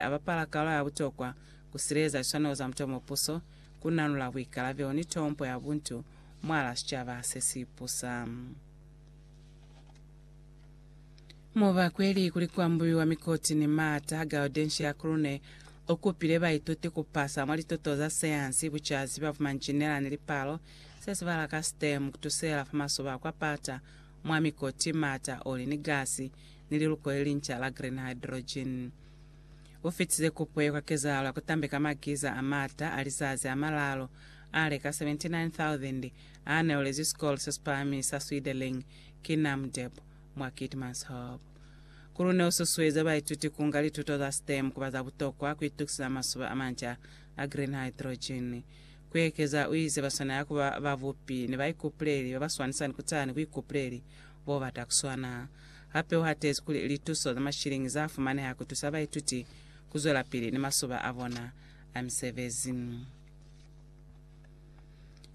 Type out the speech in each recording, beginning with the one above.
a bapala kalu ya butokwa ku sileleza liswanelo za mutu yo mwa puso, ku nanula buikalabelo ni tompo ya buntu mwalaa sicaba se si pusa. Mubakweli kuli ku ambuiwa mikoti ni maata, Gaudentia Krune u kupile baituti ku pasa mwa lituto za sayansi, bucazi bwa bumanjinela ni lipalo, se zibahala ka STEM, ku tusela fa masoba a kwa pata mwa mikoti, maata, oli ni gasi, ni liluko le linca la green hydrogen. U fitize kupo ye kwa kezahalo ya ku tambe ka makiza a m'ata a lizazi a malaalu a le ka 79,000 a neolezwi sikolo se si pahameng sa Swideleng ki NAMDEB mwa Keetmanshoop. Kulu ne u susueza baituti ku nga lituto za STEM ku ba za butokwa ku itukiseza masuba a manca a green hydrogen. Ku ekeza, u ize ba swanela ku ba babupi ni baikupuleli ba ba swanisani kutani buikupuleli Bo bata ku swana. Hape u hatezi kuli lituso za mashilingi za fumaneha ku tusa baituti ku zwelapili ni masoba a bona a misebezi.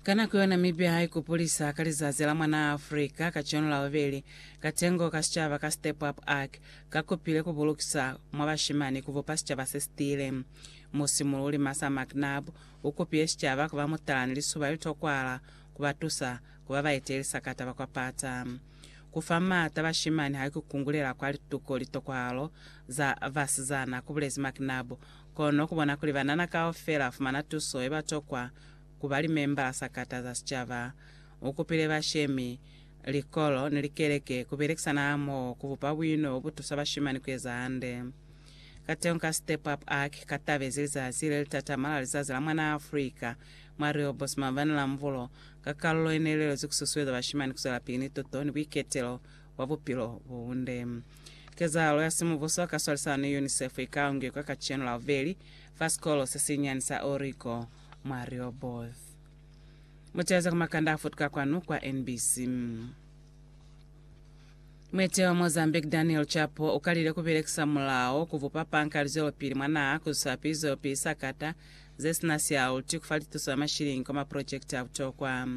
Ka nako yeo Namibia ha ikupulisa ka Lizazi la Mwanaa Afrika kacenu la bubeli, katengo ka sicaba ka Step Up Arc ka kupile ku bulukisa mwa bashimani ku bupa sicaba se si tiile. Musimululi Martha McNab u kupile sicaba ku ba mutala ni lisuba li tokwahala ku ba tusa ku ba baetelisa ka taba kwa pata. Ku fa maata bashimani haiku ku kungulela kwa lituko litokwahalo za basizana, ku bulezi McNabb. Kono ku bona kuli banana kaufela ba fumana tuso ye ba tokwa ku ba limembala sakata za sicaba, u kupile bashemi, likolo, ni likeleke ku belekisana hamoho ku bupa buino bo bu tusa bashimani ku eza hande. Kateñi ka Step Up Ark ka tabezi lizazi le li tatama la Lizazi la Mwanaa Afrika Mwa Rio Bosma bani la mubulo ka kalulo ye ne lelezwi ku susueza bashimani ku zwela pili ni tuto ni buiketelo bwa bupilo bo bunde. Kezahalo ya simubuso ka swalisano ni UNICEF i ka ungekwa kacenu la bubeli fa sikolo se sinyani sa Orico mwa Rehoboth. Muteza ku makanda a futuka kwanu kwa NBC. Mwete wa Mozambique Daniel Chapo ukalile kubelekisa mulao kubupa panka lizwelopili mwa naha kuzusa pili zwelopili sakata zesina sialuti kufa lituso ya mashilingi kwa maprojekiti a butokwa.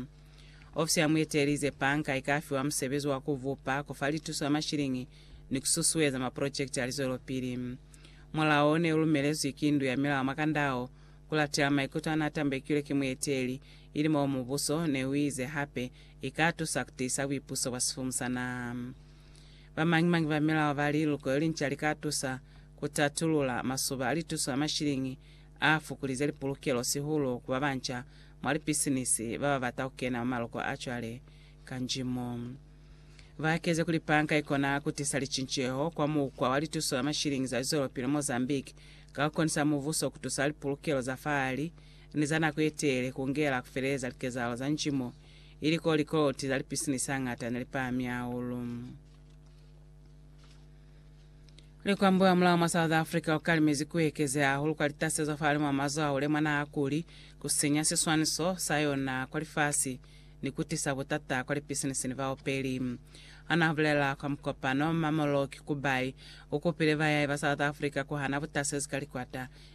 Ofisi ya muete ilize panka ikafiwa musebezi wa kubupa, kufa lituso ya mashilingi ni kususueza maprojekiti a lizwelopili. Mulao o ne ulumelezwi ki Ndu ya Milao mwa kanda ao kulatela maikuto ana atambekilwe ki mueteli, ili moo mubuso neuize hape I ka tusa ku tiisa buipuso bwa sifumu sa naha. Ba mañi-mañi ba milao ba li luko yo linca li ka tusa ku tatulula masuba a lituso a mashiliñi a fukulize lipulukelo sihulu ku ba banca mwa lipisinisi ba ba bata ku kena mwa maloko a cwale ka njimo. Ba kezi kuli panka i kona ku tisa licinceho kwa mukwa wa lituso la mashiliñi za lizwelopili Mozambique ka ku konisa mubuso ku tusa lipulukelo za fahali ni za nako ye telele ku ngela ku feleza likezahalo za nji mo i li ko likoloti za lipisinisi hañata ne li pahami hahulu. Likwambo hamulaho mwa South Africa ku kalimezi ku ekezeha hahulu kwa litasezo hafahalimw'a mazo a hule mwa naha kuli ku sinya siswaniso sa yona kwa lifasi ni ku tisa butata kwa lipisinisi ni baopeli. Ha n'a bulela kwa mukopano, Mmamoloki Kubai u kupile bayahi ba South Africa ku hana butasezi ka likwata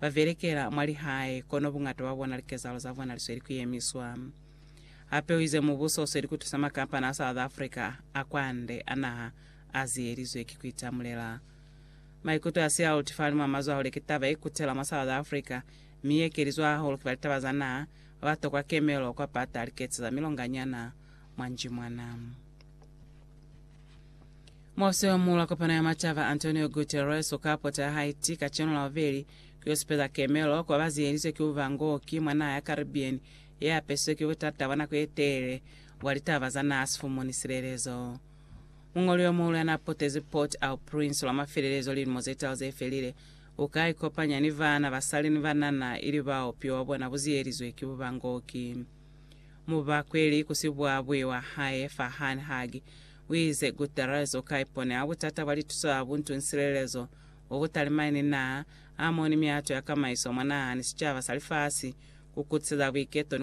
ba belekela mwa lihae, kono buñata bwa bona likezahalo za bona li sweli ku yemiswa. Hape u ize mubuso u sweli ku tusa makampani a South Africa a kwande a naha a ziyelizwe ki ku itamulela. Maikuto a siya aluti fahalimw'a mazo ahule ki taba ye kutela mwa South Africa, mi ye ekelizwa hahulu ki ba litaba za naha ba ba tokwa kemelo kwa pata liketsi za milonganyana mwa njimwana. Muofisi wa Muula Kopano ya Macaba Antonio Guterres u ka pota ya Haiti kacenu la bubeli ku yo supeza kemelo ku ba ba ziyelizwe ki buba ngo ki mwa naha ya Caribbean ye apesizwe ki butata bwa nako ye telele bwa litaba za naha sifumu ni silelezo. Muñoli yo muhulu ya n'a potezi Port au Prince lwa mafelelezo lilimo ze talu ze felile u ka ikopanya ni baana, basali ni banana ili bao bupilo bwa bona bu ziyelizwe ki buba ngo ki mubakweli ku sibwabwi wa hae Farhan Hagi U ize, Gutierrez u ka iponela butata bwa lituso ya buntu ni silelezo bo bu talimani ni naha hamoho ni mihato ya kamaiso mwa naha ni sicaba sa lifasi, ku kutiseza buiketo